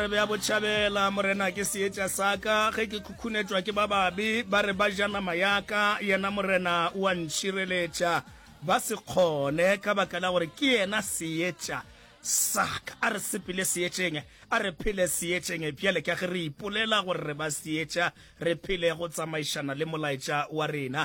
Tsebe ya Botšhabela, Morena ke seetša sa ka, ge ke khukhunetšwa ke ba babe, ba re ba ja nama ya ka, yena Morena o a ntšhireletša, ba se kgone, ka baka la gore ke yena seetša sa ka. A re sepele seetšeng, a re phele seetšeng, bjale ka ge re ipolela gore re ba seetša, re phele go tsamaišana le molaetša wa rena.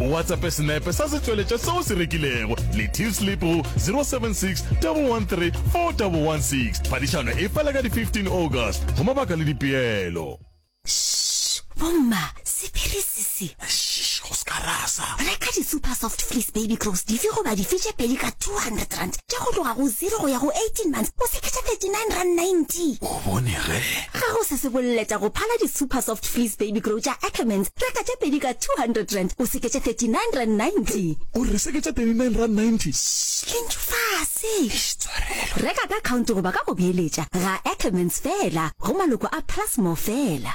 O WhatsAppe senepe sa setšweletša se o se rekilego le Tillsleep go 076 113 4116. Phadišano e fela ka di 15 August. Go mabaka le dipeelo. Shh! Bomma, sephiri se se. Shh! Go se ka rasa. Reka di-super soft fleece baby clothes dife goba dife tše pedi ka 200 rand tša go tloga go zero go ya go 18 months o se ke tša 39 rand 90. O bone ge? Ga go se se boleletša go phala di-Super Soft Fleece Baby Grow tša Ackermans, reka tše pedi ka R200, o se ke tše R39.90. O re se ke tše R39.90? Shh, le ntšu fase! Eish, tswarelo! Reka ka akhaonto goba ka go beeletša, ga Ackermans feela, go maloko a Plus More feela.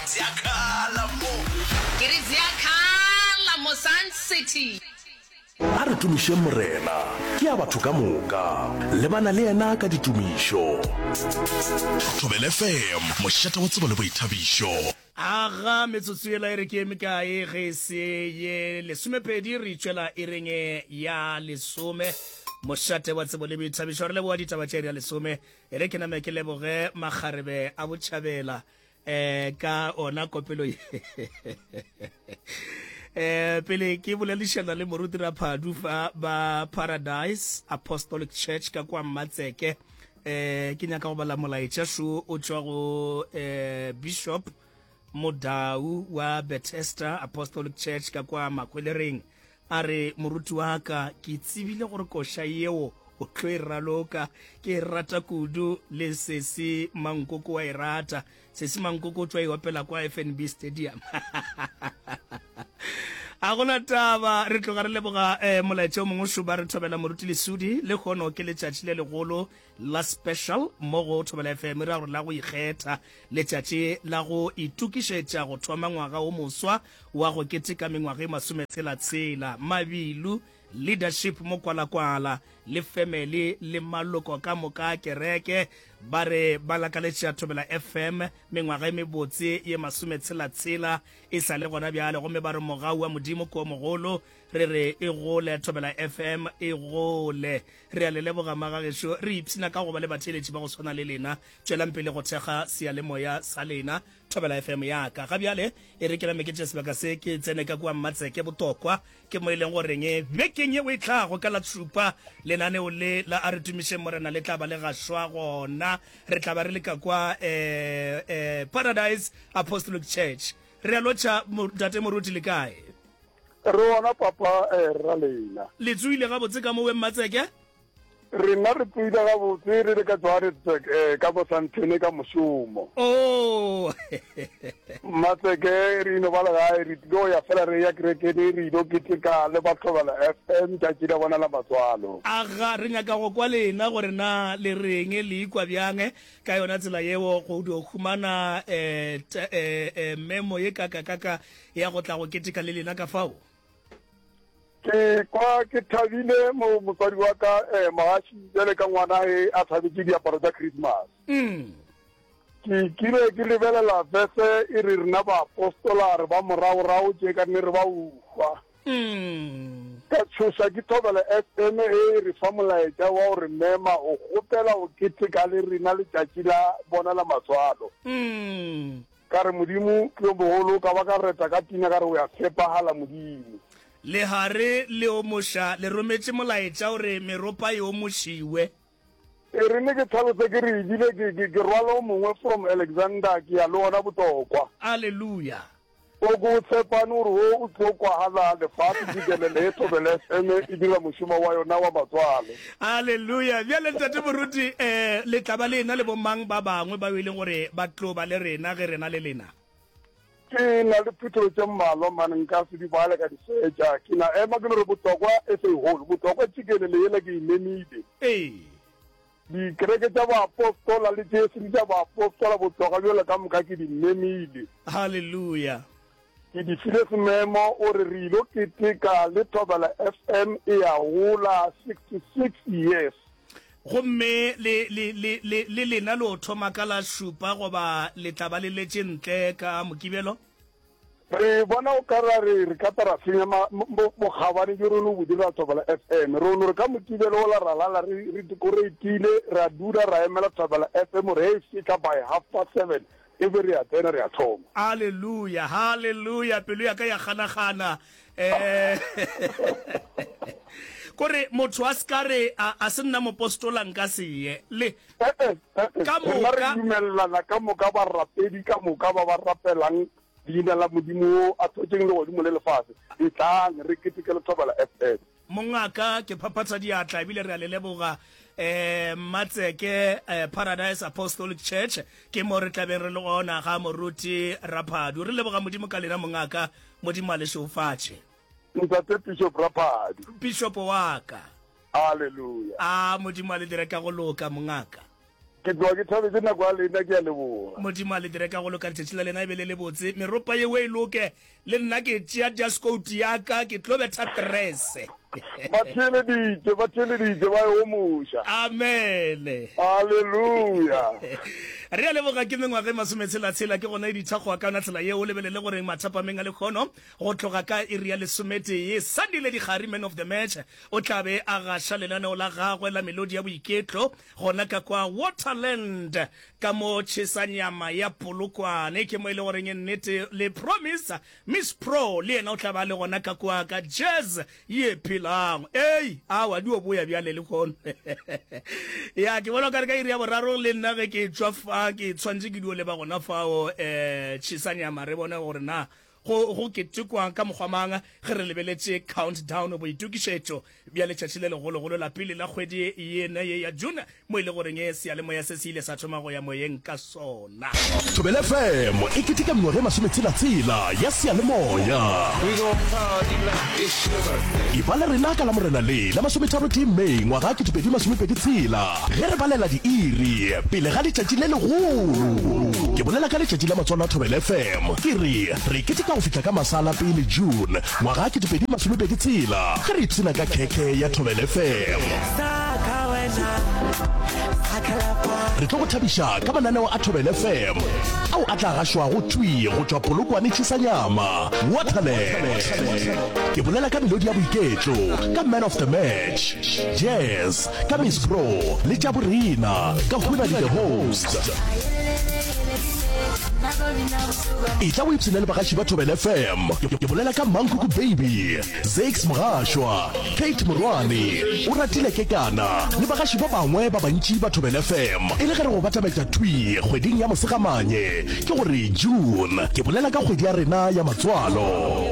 Ziakhala mo. Ke re ziakhala mo Sun City. A re tumišeng Morena, ke a batho ka moka, lebana le yena ka ditumišo. Thobela FM, mošate wa tsebo le boithabišo. Aga, metsotso yela e re ke e mekae ge e se ye lesomepedi? Re itšwela iring e ya lesome. Mošate wa tsebo le boithabišo, re leboga ditaba tše iri ya lesome. E re ke name ke leboge makgarebe a botšhabela. eh ka ona kopelo ye eh pele ke bolelišana le moruti ra phadu fa ba paradise apostolic church ka kwa mmatseke eh ke nyaka go bala molaetša šo o tšwa go eh bishop modau wa bethesda apostolic church ka kwa makhwelereng A re, Moruti wa ka, ke tsebile gore koša yeo o tlo e raloka. Ke e rata kudu, le Sesi Mankoko wa e rata. Sesi Mankoko o tšwa e opela kwa FNB Stadium. a gona taba re tloga re leboga um molaetša o mongwe šuba re thobela moruti lesudi le kgono ke letšatši le legolo La Special mo go Thobela FM ra gore la go ikgetha letšatši la go itokišetša go thoma ngwaga wo moswa wa go keteka mengwaga e masometshela tshela. Mabilu, Leadership mo Kwalakwala le family le maloko ka moka a kereke ba re ba lakaletša Thobela FM mengwaga e mebotse ye masometshela tshela e sa le gona bjale gomme ba re mogau wa Modimo ke o mogolo re re e gole thobela fm e gole re a le leboga magagešo re ipshina ka go ba le batheeletši ba go swana le lena tšwelang pele go thekga seyalemoya sa lena thobela fm yaka ga bjale e re ke name ke tše sebaka se ke tsene ka kua mmatseke botokwa ke mo e leng goreng bekeng yeo e tlago ka la tšhupa lenaneo le la a re tumišeng morena le tla ba le gašwa gona re tla ba re le ka kwa eh, eh, paradise apostolic church re a lotšha mo- tate moruti le kae Re gona papa rra lena. Le tsoile gabotse ka mo we Mmatseke? Rena re tsoile gabotse re le ka Johannesburg ka bo Sandton ka mošomo. Ooh. Mmatseke re ino ba legae re tlilo ya fela re ya kerekene re ilo keteka le ba Thobela FM tšatši la bona la matswalo. Aga re nyaka go kwa lena gore na le reng le ikwa bjang ka yona tsela yeo go dio humana memo ye kaka kaka Ya go tla go keteka le lena ka fao. Ke kwa ke thabile mo motswadi wa ka eh, Mohashi bjale ka ngwana e a thabetše diaparo tša Christmas. Mm. Ke kile ke lebelela verse e re rena baapostola re ba moraorao tše ka ne re ba uhwa. Mm. Ka tshoša ke thobela FM e e re fa molaetša wa gore mema o kgopela o keteka le rena letšatši la bona la matswalo. Mm. Ka re, Modimo, ke yo mogolo, ka ba ka reta ka pina, ka re, O ya tshepagala, Modimo. Lehare le omoša le rometše molaetša gore meropa e omošiwe. E rile ke tlhalose ke re, Ebile ke, ke, ke rwala o mongwe from Alexander, ke ya le wona Botlokwa. Aleluya! O ko o tshepane gore wo o tlo kwagala, lefase, Bibele le e thobele, FM e dira mošomo wa yona wa matswalo. Aleluya! Bjale, Ntate Moruti, e, le tla ba le ena le bomang ba bangwe bao e leng gore ba tlo ba le rena ge rena le lena? Ke na le phutholo tše mmalwa, man. Nka se di bale ka di fetša. Ke na ema ke no re, Botokwa, SA Hall, Botokwa, tšikelele yela ke e memile. Ee. Dikereke tša baapostola le tše e seng tša baapostola, Botokwa bjale ka moka ke di memile. Haleluya! Ke di file sememo o re re ilo keteka le Thobela FM e ya gola 66 years. Gomme le, le, le, le, le lena lo thoma ka la šupa goba le tla ba le letše ntle ka Mokibelo? Re bona o ka ra re re ka ta ra senya ma, bo, bokgabane bjo re no bo dira Thobela FM. Re no re ka Mokibelo ola ra lala re, re dikoreitile, ra dula ra emela Thobela FM gore ge e fihla by half past seven E be re a tsena, re a thoma. Aleluya! Haleluya! Pelo ya ka ya ganagana. Kore motho a se ka re, A, a se nna mopostola nka se ye. Le, Ee-e, ee-e. Ka moka. Rena re dumelelana ka moka, barapedi ka moka ba ba rapelang Leina la Modimo wo a thotšeng legodimo le lefase. Etlang, re keteke lethobela, FF. Mongaka, ke phaphatha diatla ebile re a le leboga um Mmatseke um Paradise Apostolic Church ke mo re tlabeng re le gona ga moruti Raphadu. Re leboga Modimo ka lena mongaka, Modimo a le šeofatše. Ntate Bishop Raphadu. Bishop wa ka. Hallelujah. A Modimo a le dire ka go loka mongaka. Ke tloga ke thabetše nako ya lena, ke a leboga. Modimo a le dire ka go loka, letšatši la lena e be le le botse, meropa yeo e loke. Le nna ke tšea diaskouti ya ka, ke tlo betha trese. Ba theeleditše, ba theeleditše, ba e omoša. Amene. Aleluya. Re a leboga, ke mengwaga e masometshela-tshela, ke gona e ditha go akana tsela yeo. O lebelele gore mathapameng a lekgono, go tloga ka iri ya lesometee, Sandile Dikgari, man of the match, o tla be a gaša lenaneo la gagwe la melodi ya boiketlo, Gona ka kwa Waterland, ka mo tšhesa nyama ya Polokwane, ke mo e le goreng e nnete le promise Miss Pro le yena o tla ba le gona ka kwa ka jazz ye phelago. Ei, awa di o boya bjale le kono. Ya, ke bona o kare ka iri ya boraro le nna ge ke tšwa fa ke tshwantše ke di o leba gona fao, eh, tšhesa nyama re bone gore na Go, go ketekwa ka mokgwa mang ge re lebeletše countdown, boitokišetšo bja letšatši le legologolo la pele la kgwedi yena ye ya June, mo e le goreng seyalemoya se se ile sa thoma go ya moyeng ka sona! Thobela FM e keteka mengwaga e masometshela-tshela ya seyalemoya. Eba le rena ka Lamorena le la masometharo-tee May ngwaga wa ketepedi masomepedi tshela. Ge re balela diiri pele ga letšatši le legolo, ke bolela ka letšatši la Matswalo a Thobela FM, ke re re keteka go fihla ka masa a la pele June ngwaga a kete pedi masome pedi tshela ge re ipshina ka khekhe ya Thobela FM. Re tlo go thabiša ka mananeo a Thobela FM ao a tla gašwago thwi go tšwa Polokwane Chisanyama, Waterland. Ke bolela ka melodi ya boiketlo, ka Man of the Match, Jazz, Ka Miss Pro le tša borena ka huna di the host. Etla o ipshine le bagaši ba Thobela FM. Ke bolela ka Mangkuku Baby, Zakes Mogashwa, Kate Morwane, Oratile Kekana le bagaši ba bangwe ba bantši ba Thobela FM. E le ge re go batametša thwi kgweding ya Mosegamanye, ke gore June, ke bolela ka kgwedi ya rena ya matswalo.